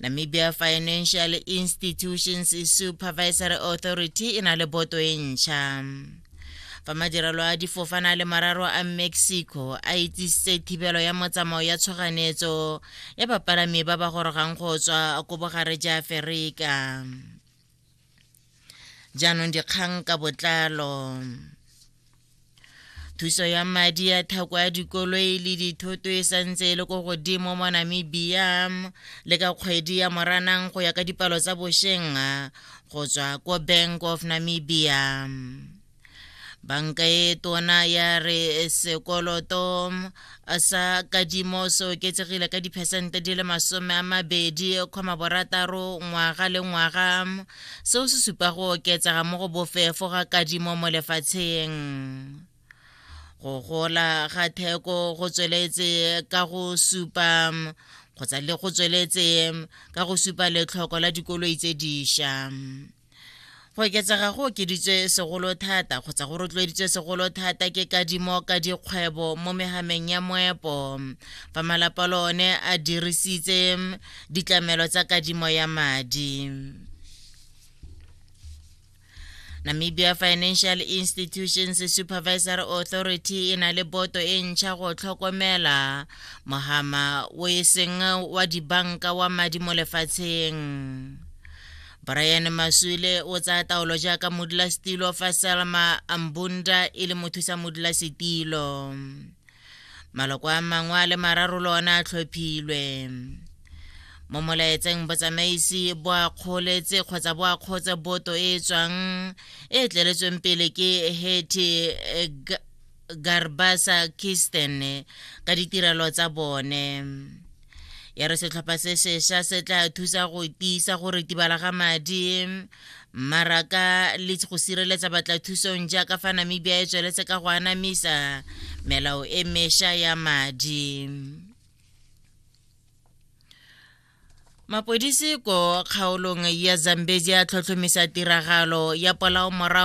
Namibia Financial Institutions Supervisory Authority e na le boto e ntšha fa madirelo a difofana le mararo a mexico a itsisitse thibelo ya motsamao ya tshoganetso ya bapalami ba ba gorogang go tswa ko bogare ja aferika jaanong dikgang ka botlalo thuso ya madi ya thako ya dikoloi le dithoto e santse e le ko godimo mo namibia le ka kgwedi ya moranang go ya ka dipalo tsa bosheng go tswa ko bank of namibia banka e tona ya re sekoloto sa kadimo se oketsegile ka diphesente di le masome a mabedi kgoma borataro ngwaga le ngwaga seo se supa go oketsega mo go bofefo ga kadimo mo lefatsheng go gola ga theko go tsweletse ka go supa kgotsa le go tsweletse ka go supa letlhoko la dikoloi tse diša go oketsega go okeditswe segolo thata kgotsa go rotloeditswe segolo thata ke kadimo ka dikgwebo mo megameng ya moepo fa malapa le one a dirisitse ditlamelo tsa kadimo ya madi namibia financial institutions supervisory authority e na le boto e ntšha go tlhokomela mogama o e seng wa dibanka wa madi mo lefatsheng brian maswile o tsaya taolo jaaka modulasetilo fa salma ambunda e le mothusa modulasetilo maloko a mangwe a le mararo le one a tlhophilwe mo molaetseng botsamaisi bo akgoletse kgotsa bo akgotse boto e e tswang e tleletsweng pele ke heti garbasa kisten ka ditirelo tsa bone ya re setlhopha se sesha se tla thusa go tiisa go retibala ga madi mmaraka le go sireletsa batlathusong jaaka fa namibia e tsweletse ka go anamisa melao e mesha ya madi mapodisi ko kgaolong ya zambezi a tlhotlhomisa tiragalo ya polao morago